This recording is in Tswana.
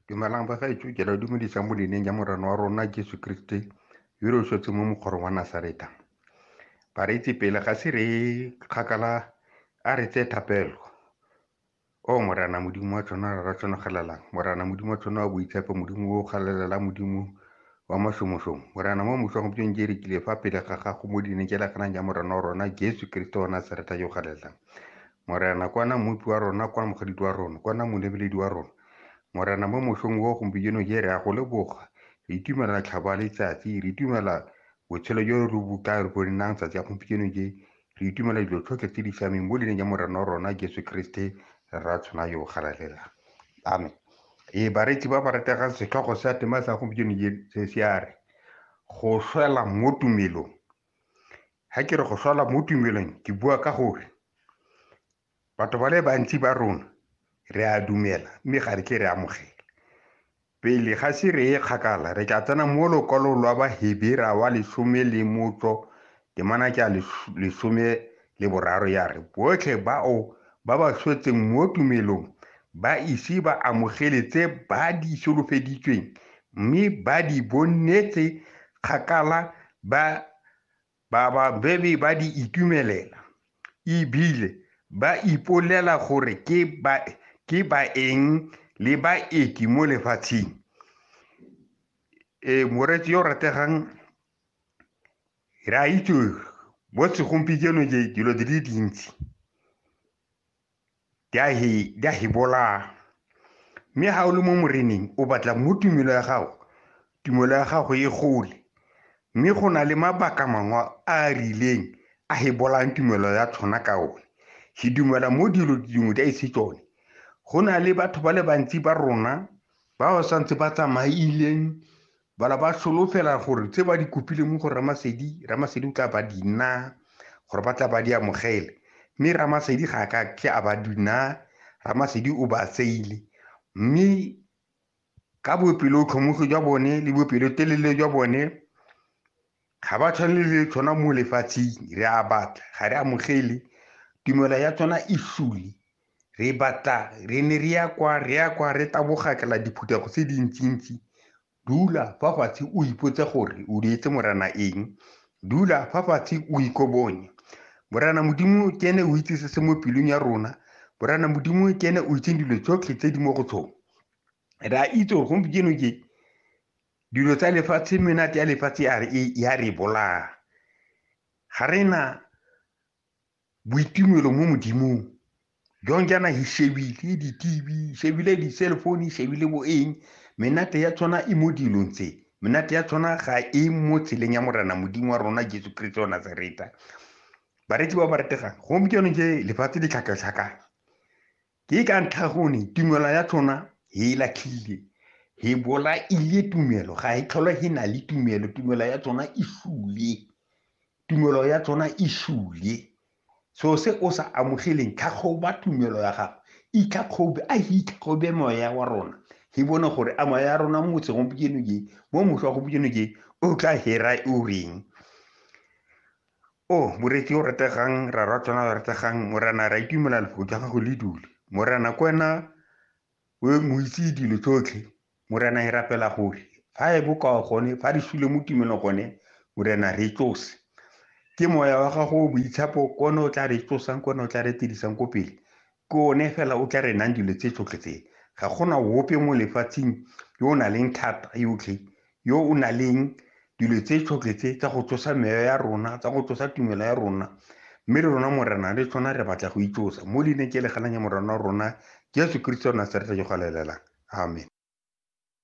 Dumelang bagaetsho ke ra dumedisa mo leineng ya morena wa rona Jesu Kriste yo re swetse mo mokgorong wa Nasareta. Bareetsi pele ga se re kgakala a re tse thapelo. O morena modimo wa tshwana ra tshwanagelelang morena modimo wa tshwana wa boitshepo modimo o galelela modimo wa mashomoshong morena mo moso wa gompieno ke rekile fa pele ga gago mo dineng ke lakanang ya morena wa rona Jesu Kriste wa Nasareta yo galelang Morena, kwana Mmopi wa rona, kwana Mogaditi wa rona, kwana Molebeledi wa rona. Morena, mo mosong o gompieno je re a go leboga, re itumela tlhaba letsatsi, re itumela botshelo jo re bo ka re bonang tsatsi ya gompieno je, re itumela dilo tlhotlhe tse di siameng mo leineng ya Morena wa rona Jesu Kriste, Rra tshwana yo galalelang. Amen. Ee, bareetsi ba ba rategang setlhogo sa tema sa gompieno je se se a re, Go swela mo tumelong. Ga ke re go swala mo tumelong ke bua ka gore batho ba le bantsi ba rona re a dumela mme ga re ke re amogela. Pele ga se re ye kgakala re tla tsena mo lokwalong lwa Bahebera wa lesome le motso temana ke a lesome le boraro ya re botlhe bao ba ba swetseng mo tumelong ba ise ba amogele tse ba di solofeditsweng mme ba di bonetse kgakala ba Bababedi ba di itumelela e bile ba ipolela gore ke baeng le baeti mo lefatsheng. Ee, moreetsi yo o rategang, re a itse mo segompieno dilo di le dintsi di a hi di a hi bolaya mme ga o le mo moreneng o batla mo tumelo ya gago tumelo ya gago e gole mme go na le mabaka mangwe a a rileng a he bolayang tumelo ya tshwana ka one ke dumela mo dilo dingwe di a ise tsone go na le batho ba le bantsi ba rona ba ba santse ba tsamaileng Bala ba solofela gore tse ba di kopileng mo go Ramasedi, Ramasedi o tla ba di naa, gore ba tla ba di amogele. Mme Ramasedi ga a ka ke a ba di naa, Ramasedi o ba tseile. Mme ka bopelotlhomogi jwa bone le bopelotelele jwa bone, ga ba tshwane le tshwana mo lefatsheng re a batla ga re amogele tumelo ya tsona e sule re batla re ne re ya kwa re ya kwa re tabogakela diphuthego tse dintsintsi dula fa fatshe o ipotse gore o dietse morana eng dula fa fatshe o ikobonye morana modimo ke ene o itse se se mo pelong ya rona morana modimo ke ene o itseng dilo tsotlhe tse di mo go tsone re a itse gore gompieno ke dilo tsa lefatshe menate ya lefatshe ya re bolaya ga re na boitumelo mo modimong jong jaana hi shebile di-tv shebile di-cell phone shebile bo eng menate ya tshwana e mo dilong tse menate ya tshwana ga e mo tseleng ya morena modimo wa rona jesu kriste wa nazareta bareki ba ba retegang gompieno je lefatshe le tlhakatlhakane Ke ka ntlha gone tumelo ya tlhona he e latlhile, he bolaile tumelo, ga e tlhole he na le tumelo, tumelo ya tsona e sule. Tumelo ya tsona e sule. So se o sa amogeleng, tlhagoba tumelo ya gago. Itlhagobe, a he itlhagobe moya wa rona. He bone gore a moya ya rona mo segompieno ke, mo mošwa gompieno ke, o tla hera o reng. O, oh, moreetsi o rategang, rarwa tsona o rategang, Morena, ra itumela lefoko ja gago le dule. Morena, ko wena o moitse dilo tsotlhe. Morena, e rapela gore fa e bokao gone, fa re sule mo tumelong gone, Morena, re tsose. Ke moya wa gago o boitshapo, kone o tla re tsosang, kone o tla re tirisang ko pele. Ke one fela o tla re nang dilo tse tsotlhe tse. Ga go na ope mo lefatsheng yo o nang leng thata yotlhe, yo o nang leng dilo tse tsotlhe tse tsa go tsosa meyo ya rona, tsa go tsosa tumelo ya rona. Mme le rona Morena le tsona re batla go itsosa mo leineng ke le ganang ya Morena wa rona Jesu Keresete wa Nasareta yo galelela. Amen.